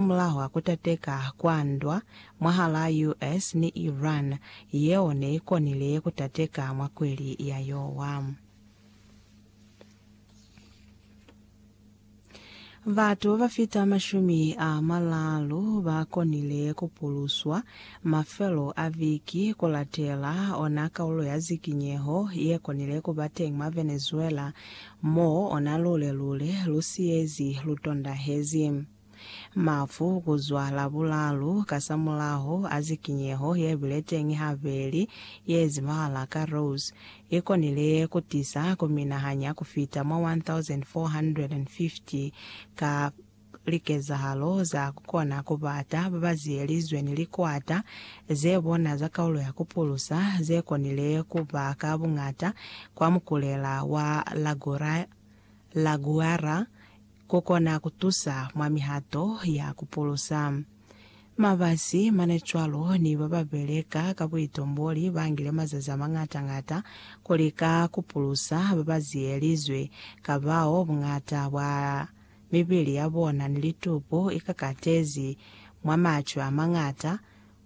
Mulaho a kutateka kwa ndwa mwahalaa US ni Iran yeo ne i konile kutateka mwa kweli ya yowa, batu ba ba fita mashumi a malaalu ba konile ku puluswa mafelo a viki ku latela ona kaulo ya zikinyeho ye konile ku ba teñi mwa Venezuela, mo ona lule-lule lu siyezi lu tondahezi. Mafu ku zwa Labulalu kasamulaho a zikinyeho ye bile teñi habeli ye zibahala ka Rose, i konile ku tisa ku minahanya ku fita mwa 1,450 ka likezahalo za ku kona ku bata ba ba ziyelizwe ni likwata ze bona za kaulo ya ku pulusa ze konile ku ba ka buñata kwa mukulela wa La Guaira, Ku kona ku tusa mwa mihato ya ku pulusa. Mabasi, manecwalo, ni ba ba beleka ka buitumbuli ba ngile mazazi a mañata-ñata ku lika ku pulusa ba ba ziyelizwe ka bao buñata bwa mibili ya bona ni litupu i kakatezi mwa macwe a mañata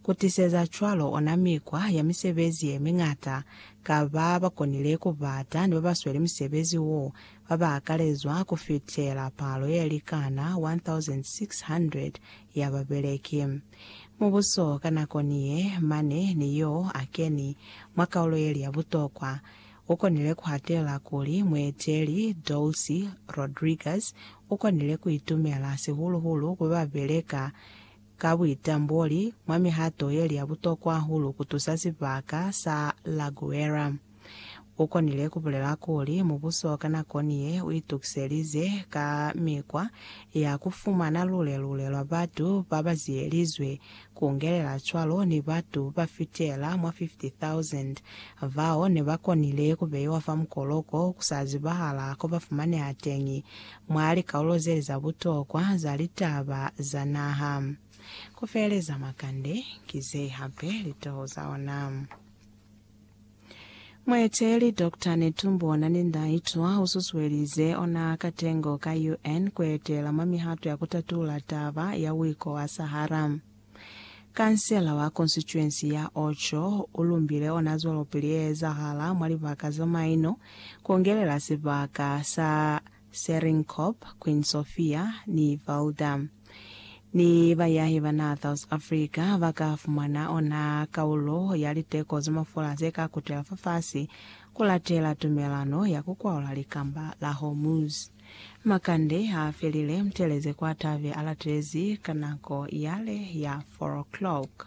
Ku tiseza cwalo ona mikwa ya misebezi ye miñata ka ba ba konile ku bata ni ba ba sweli musebezi wo ba ba akalezwa ku fitela palo ye likana 1,600 ya babeleki. Mubuso ka nako ni ye mane ni yo a keni mwa kaulo ye li ya butokwa, u konile ku hatela kuli mueteli Dolcy Rodriguez u konile ku itumela sihulu-hulu ku ba ba beleka ka buitamboli mwa mihato ye li ya butokwa hahulu ku tusa sibaka sa La Guera. U konile ku bulela kuli mubuso ka nakoni ye u itukiselize ka mikwa ya ku fumana lule-lule lwa batu ba ba ziyelizwe, ku ngelela cwalo ni batu ba fitela mwa 50,000 bao ne ba konile ku beiwa fa mukoloko ku sa zibahala ko ba fumaneha teñi mwa likaulo zeli za butokwa za litaba za naha. Ku feeleza makande, ki ze hape litoho za ona. Mueteeli Doctor Netumbo Nandi-Ndaitwah u susuelize ona katengo ka UN ku etela mwa mihato ya ku tatula taba ya Wiko wa Sahara. Kansela wa konsituensi ya Ocho u lumbile ona zwelopili ye ezahala mwa libaka za maino, ku ongelela sibaka sa Seringhorp, Queen Sofia ni Valdam. Ni bayahi ba naha South Africa ba ka fumana ona kaulo ya liteko za mafula ze ka kutela fafasi ku latela tumelano ya ku kwaula likamba la Hormuz. Makande a felile, Mtelezi kwa tabe a latelezi ka nako yale ya four o'clock.